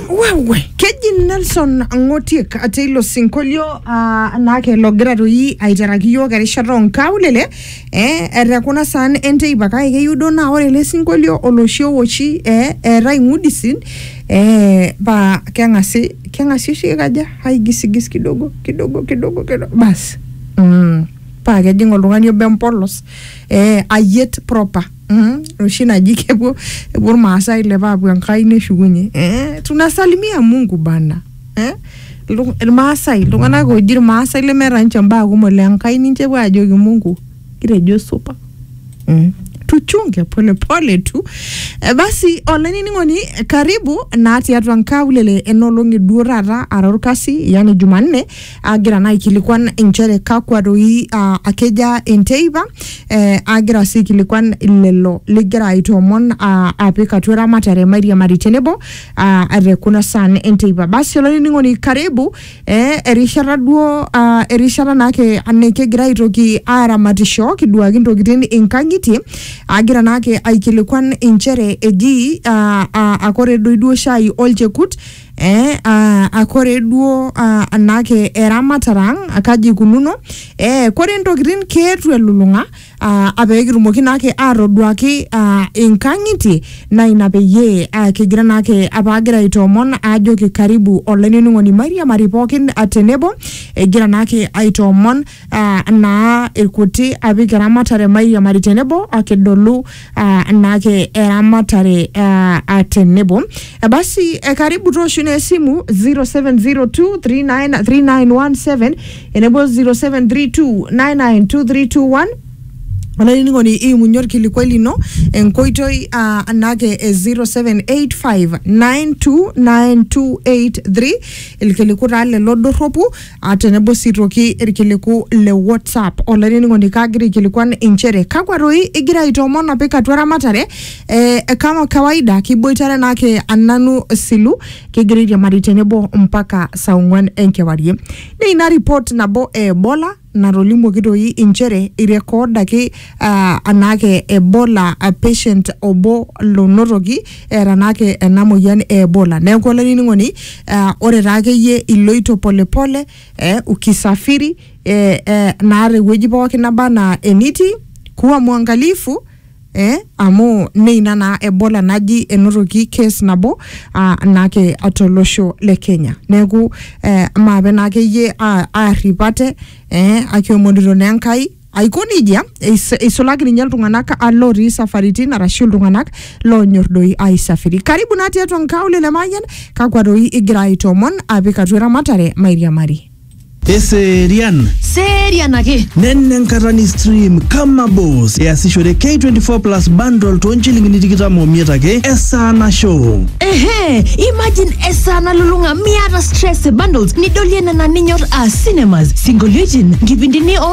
wewe keji nelson ng'otiek ate ilo sinkolio ah, naake logira toi aiteraki yiok erishata onkaulele eh, etekuna saan enteipa kake keyieu duo naa ore ele sinkolio oloshi owoshi eh, eetae ng'udisin eh, paa keng'asi keng'asi oshi kaja aigisigis kidogo kidogo kidogo kidogo basi mm, paa kejing oltung'ani obo empolos eh, ayiet proper Mm, oshi naji kepuo epuo irmaasai ilepa aapuo enkai neshukunye eh, tunasalimia mungu bana eh? Iltu- irmaasai iltung'anak ooji irmaasai lemeeta ninche mbaa kumok le enkai ninche epuo aajoki mungu kitejo supa mm. tuchunge polepole tu Eh, basi olainining'oni eh, karibu naa tiatua nkaulele enolong'i duo taata ara orkasi yani jumanne agira naa aikilikuan inchere kakwa doi uh, akeja enteipa eh, agira sii aikilikuan lelo ligira aitoomon uh, apik atua eramatare mairiamari tenebo uh, te kuna saan enteipa basi olainining'oni karibu eh, erishata duo uh, erishata naake nikigira aitoki aramatisho kiduaki intokitin inkang'itie agira naake aikilikuan inchere eji uh, uh, akore doi duo shai olchekut eh, ah, ah, kore duo ah, naake eramatare ang ah, kaji ikununo eh, kore ntokitin keetu elulung'a ah, ah, pee kitumoki naake atoduaki ah, inkang'itie naa ina peyie ah, kigira naake apa agira aitoomon ajoki karibu olainining'oni mairiamari pookin ah, tenebo egira naake aitoomon ah, naa irkuti apik eramatare mairiamari tenebo akidolu ah, naake eramatare ah, ah, tenebo Eh, basi eh, karibu tooshu naa esimu 0702393917 enebo 0732992321 olainining'oni iimunye orkilikuai lino enkoitoi ah, anake e 0785929283 ilkiliku taa lelo dorropu Ah, tenebo sii toki irkiliku le whatsapp olainining'oni kaagira aikilikuan inchere kakwa toi igira aitoomon apik atua ramatare eh, kama kawaida kiboitare naake ananu silu kigira airiamari tenebo mpaka saa ong'uan enkewarie naa ina report nabo e ebola natolimuoki toi inchere irekoodaki ah, anaake ebola ah, patient obo lonotoki eeta naake ena moyian e Ebola. Neeku olainining'oni uh, ore taa akeyie iloito polepole eh, ukisafiri eh, eh, naa tewueji pookin naba anaa enitii kuwa mwangalifu eh, amu neina naa Ebola naji enotoki case nabo ah, naake tolosho le Kenya. Neeku eh, maape naa akeyie ah, aarrip ate eh, akiomonito naa Enkai Aiko nejia, eis- eisulaki ninye iltung'anak ah, lootii isafaritin arashu iltung'anak loonyor doi aisafiri. Karibu naa tiatua nkaulele Mayian, kakwa doi igira aitoomon apik atua eramatare mairiamari. Eserian Serian ake. nene enkata ni stream kama boss easishore K24 plus bundle too nchilingini tikitam omiet ake esaa nasho. Ehe, imagine esaa nalulung'a miata stress e bundles nidolie nena ninyor aa cinemas, sinkolioitin, nkipindini o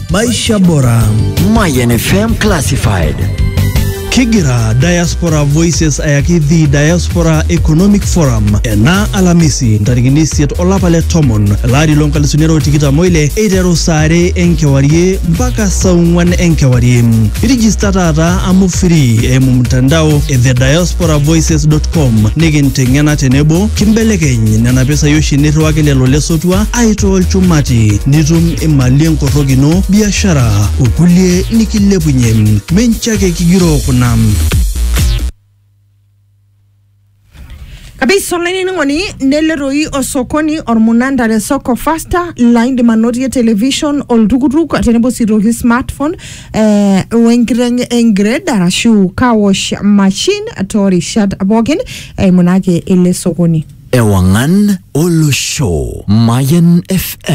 Maisha Bora. Mayan FM Classified. Kigira Diaspora Voices ayaki The Diaspora Economic Forum ena Alamisi ntarikini isiet olapa le tomon elari loo nkalisuni are o tikitam oile eiteru saa are enkewarie mpaka saa ong'wan enkewarie. Irijista taata amu free eimu mtandao e thediasporavoices.com nikinteng'ena tenebo kimbelekeny nena pesai oshi nirriwaki lelo lesotua aitoo lchumati nitum imali enkorrok ino, biashara okulie nikilepunye. Mincho ake kigiroo kuna. kabisa olainining'oni nele toi osokoni ormunanda le soko fasta laa indim anotie television oltukutuk tenebo sii toki smartphone eh, wenkiteng engred arashu car wash machine toorishat pookin eimu naake ele sokoni Ewangan Olosho. Mayan FM.